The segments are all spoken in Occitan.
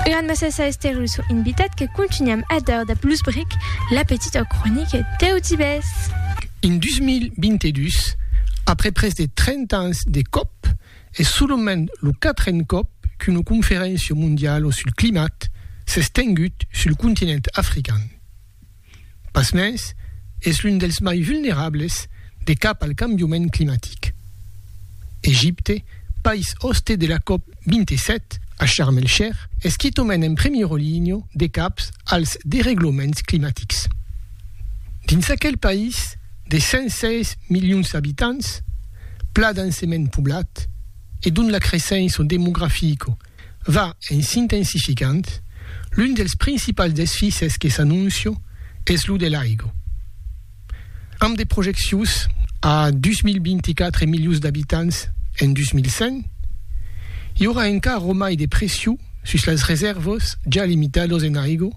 Eran messas a Esther lo sò invitat que contunham a dar dab los bric la petita cronica deu divés. En 2022, après pres de 30 ans de còp, es solament lo quatren còp qu'una conferéncia mondiala sul climat s'es tengut sul continent african. Pasmens, es l'un dels mai vulnerables de cap al cambiament climatic. Egipte, país òste de la cop 27 a Sharm el Sheikh, es qui tomen en primièra linha de cap als deregloments climatics. Dins aquel país de 106 milions d'abitants, pla densement poblat e dont la creissença demografica Va en s'intensificant, l'un dels principals desfises que s'anóncio es lo de l'aigo. Amb de projeccions a 2024 milius d'abitants en 2100, i aurà encara ro mai de pression sus las resèrvas ja limitados en aigo,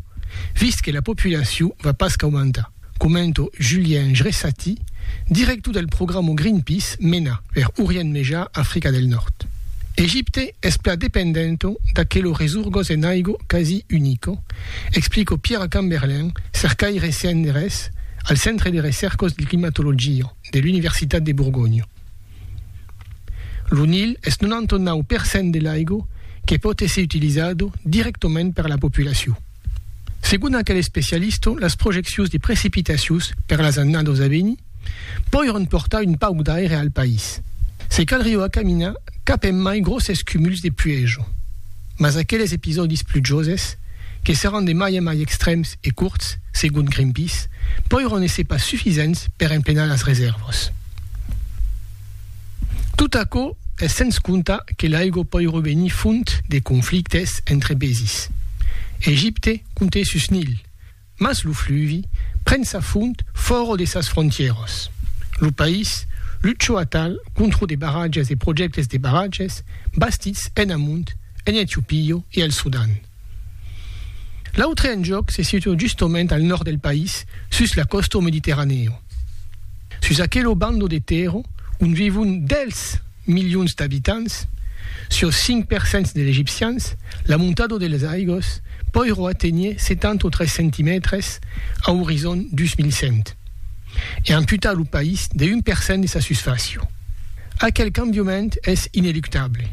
vist que la populacion va pas qu'aumentar. Comento Julien Jresati, director del programa Greenpeace mena per Orient Mejar, Africa del Nòrd. Egipte es plan dependent d'aquelo resurgos en aigo quasi unico, explico Pierre Camberlin, cercaire CNRS al Centre de Recercos de Climatologia de l'Universitat de Borgonha. Lo Nil es 99 per cent de l'aigo que pòt èsser utilizado directament per la populacion. Segon aquel especialista, las projeccions de precipitacions per las annadas a venir poiràn portar un pauc d'aire al país. Se calrió acaminar cap en mai gròsses cumuls de puèja. Mas aqueles episòdis plujoses, que seràn de mai en mai extrèms e curts, segon Greenpeace, poiràn èsser pas sufisents per emplenar las resèrvas. Tot aquò es sens comptar que l'aigua pòi revenir font de conflictes entre paesis. Egipte compte sus Nil, mas lo fluvi pren sa font fòra de sas frontièras. Lo país luchó atal contra de barratges e projèctes de barratges bastits enamont en Etiopia e al Sudan. L'autre enjòc se situa justament al nòrd del país, sus la costau mediterranèu. Sus aquelo bandau de tèrra ont vivon dels milions d'abitants, siós 5 per cents de l'egipcians, la montada de las aigos poirò aténher 73 centimètres a orizon 2100 e amputar lo país de 1 per cent de sa susfàcia. Aquel cambiament es ineluctable.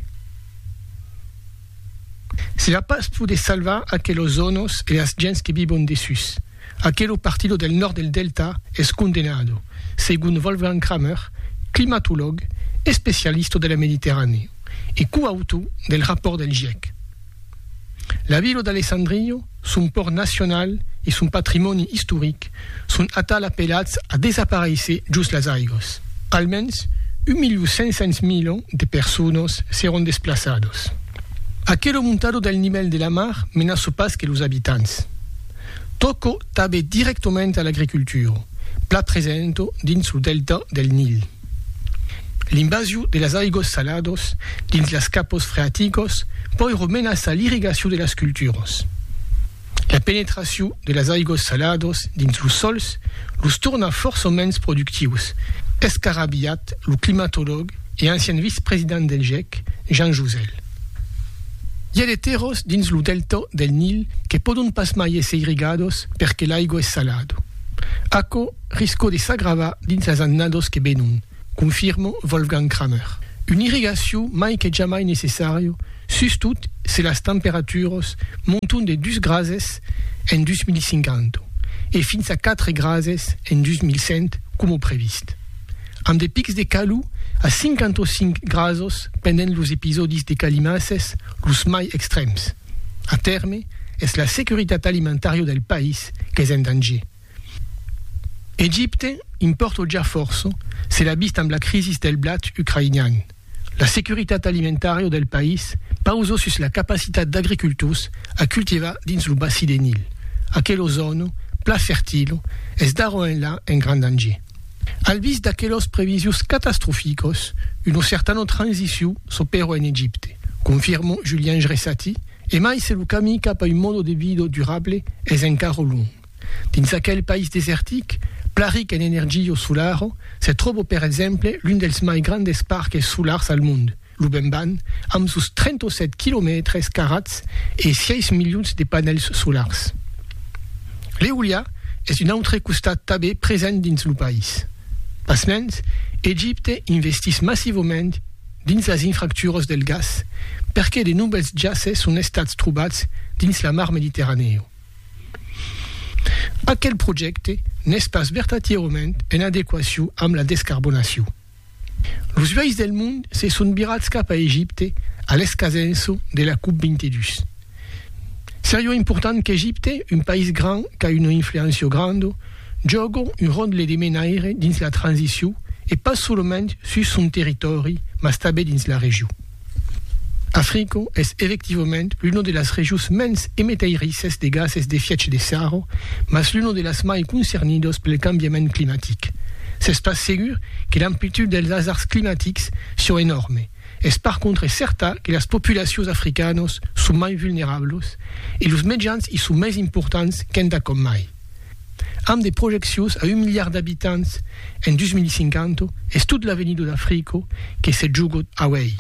Se la pas poder salvar aquelos zònos e las gents que vivon dessús. Aquelo partido del nòrd del delta es condenado, segon Wolfgang Kramer, climatològ, especialista de la Mediterranèa e coautor del rapòrt del gièc. La vila d'Alessandrillo, son pòrt nacional e son patrimòni istoric son atal apelats a desaparéisser jos las aigos. Almens 1.500.000 de personas seràn desplaçadas. Aquela montada del nivèl de la mar menaça pas que los abitants. Tòca tanben dirèctament a l'agricultura, plan presenta dins lo delta del Nil. L'invasiu de las aigos salados dins las capos freaticos pòirò menaçar l'irrigaciu de las culturas. La penetraciu de las aigos salados dins los sòls los torna fòrça mens productius, escarabilhat lo climatològ e ancian vice-president del gec, Jean Jouzel. I a de terròs dins lo delta del Nil que pòdon pas mai èsser irrigados perque l'aigua es salada. Aquò Risco de s'agravar dins las annados que venon, confirmo Wolfgang Kramer. Una irrigacion mai que jamai necessària, sustot se las temperaturas monton de dus grases en 2050 e fins a quatre grases en 2100 coma previst, amb de pics de calor a 55 grases pendent los episòdis de calimasses los mai extrèms. A tèrme, es la securitat alimentària del país qu'es en danger. Egipte impòrto ja fòrça, se l'a vist amb la crisis del blat ucraïnian. La securitat alimentària del país pausa sus la capacitat d'agricultors a cultivar dins lo bassi de Nil, aquela zòna plan fertila es d'ara enlà en grand danger. Al vist d'aquelas previsions catastroficas, una certana transicion s'opèra en Egipte, confirma Julien Jresati, emai se lo camin cap a un mòde de vida durable es encara luònh. Dins aquel país desertic, plan ric en energio solaro, se tròbo per exemple l'un dels mai grandes parques solars al mond, lo Bemban, amb sos 37 quilomètres carats e 6 milions de panèls solars. L'eoliá es d'un autre costat tabé present dins lo país. Pasmens, Egipte investiss massivament dins las infracturas del gas perque de novèls jaces son estats trobats dins la mar Mediterranèo. Aquel projècte n'es pas vertatièrament en adequacion amb la descarbonacion. Los uèis del mond se son virats cap a Egipte a l'escasenço de la Cop 22. Seriá important qu'Egipte, un país grand qu'a una influéncia granda, jòga un ròtle de menaire dins la transicion e pas solament sus son territòri mas tanben dins la region. Africa es efectivament l'una de las regions mens emetairissas de gases d'efièch de sarro, mas l'una de las mai concernidas pel cambiament climatic. S'es pas segur que l'amplitud dels asards climatics siá enòrme, es par contre cèrta que las populacions africanas son mai vulnerablas e los mejans i son mai importants qu'entacòm mai. Amb de projeccions a un miliard d'abitants en 2050, es tot l'avenidor d'Africo que se joga auèi.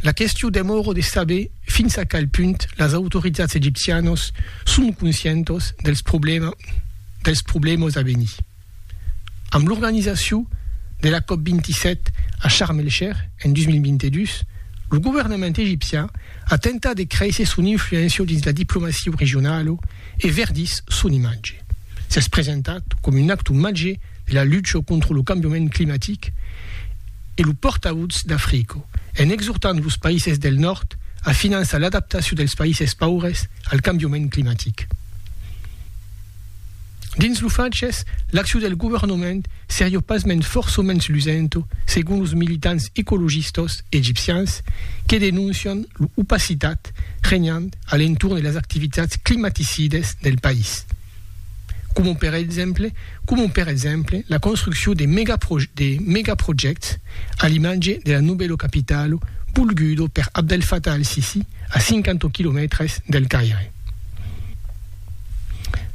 La question demòra de saber fins a qual punt las autoritats egipcianas son conscientas dels problèmas a venir. Amb l'organizacion de la cop 27 a Sharm el Sheikh en 2022, lo governament egipcian a tentat de créisser son influéncia dins la diplomacia regionala e verdís son imatge. S'es presentat coma un actor màger de la lucha contra lo cambiament climatic e lo pòrtavotz d'Africa, en exortant los païses del nòrd a finançar l'adaptacion dels païses paures al cambiament climatic. Dins lo Faches, l'accion del governament seriá pasmens fòrçaments lusento, segon los militants ecologistas egipcians que denoncian lo opacitat regnant a l'entorn de las activitats climaticidas del país, coma per exemple coma per exemple la construccion de de megaprojècts a l'imatge de la novèla capitala volguda per Abdel Fattah al-Sissi a 50 quilomètres del Caire.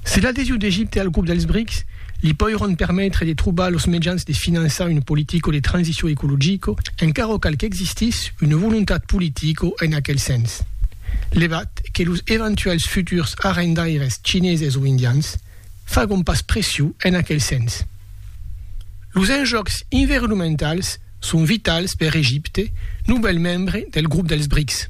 Se l'adhesion d'Egipte al grop dels BRICS li poiròn permetre de trobar los mejans de finançar una politica de transicion ecologica, encara cal qu'existís una volontat politica en aquel sens. Levat que los eventuèls futurs arrendaires chineses o indians fagon pas pression en aquel sens. Los enjòcs environomentals son vitals per Egipte, novèl membre del grop dels BRICS.